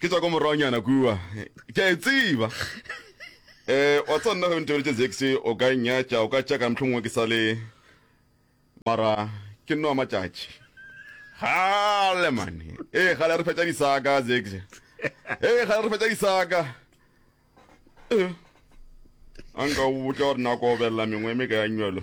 ke tswa ko morwanyana kua ke a e tsiba um wa tsa nna ge ntebeletse zexe o ka nyatša o ka tšaka motlho mongwe ke sa le mara ke nnoa matšatši gale mane ee gale a re fetša disaka zexe ee gale re fetša disaka a nka o botla gore nako obelela mengwe e me ka ya nywelo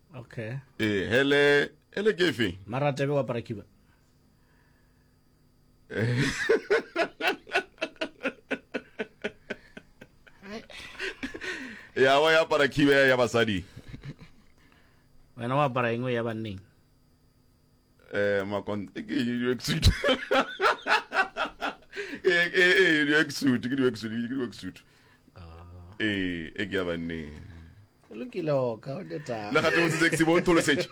okay ee hele hele ke fe mara tebe wa para kiba ya wa ya para kiba ya basadi wena wa para engwe ya banneng eh makon e ke eng work suit e e e work suit ke work suit ke work suit e e ke ya banne lokile o ka o deta le ga tlo se ke bo ntlo setse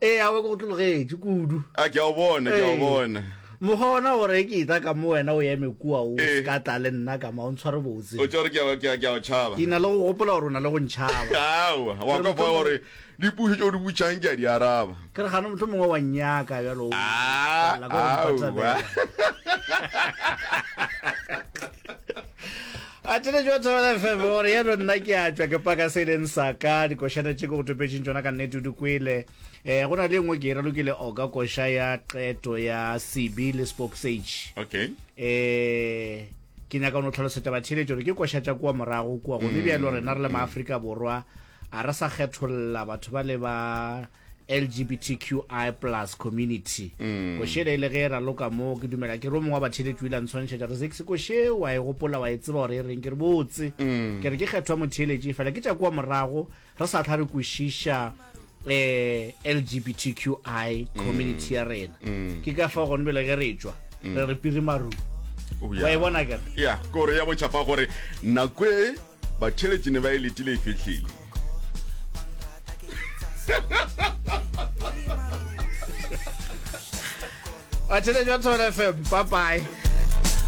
e a go tlogetse kudu a ke a bona ke a bona mogona gore ke ita ka mo wena o eme kua o eh. ka tla le nna ka ma o ntshware botse o tsore ke ke ke a tshaba ke na le go gopola gore o na le go ntshaba awa wa ka fa gore Dipušo tšeo di butšang ke a di araba. Ke re gano mohlomongwe wa nnyaka bjalo o tlala ka go mpatabela. a tene jo thobela fm gore yeno nna ke a tšwa ke paka se e leng saka dikošana tše ke go topetšeng tšona ka nnete o di kwele um go na le e nngwe ke e ralokile oka koša ya qeto ya cb le spoksage okay um ke nyaka o ne o tlhalosetša batheeletši gore ke koša tša kua morago kua gone bjalo rena re le maaforika borwa A re sa kgetholla batho ba le ba LGBTQI plus community mm. košele e le ge e raloka moo ke dumela ke re o mongwe wa batheletši o ile a ntshwantšhetša re sexi koše wa e gopola wa e tseba gore e reng ke re botse mm. ke re ke kgethwa motheletši fela ke tša kua morago re sa tlha re kwešiša eh LGBTQI mm. community ya rena mm. ke ka fa gone bele ge re tšwa mm. re re piri maru wa e bona kere ya kore ya bochapa gore nakwe Batheletši ne ba e letile e fihlile. Batheletši ba Thobela FM, bye bye.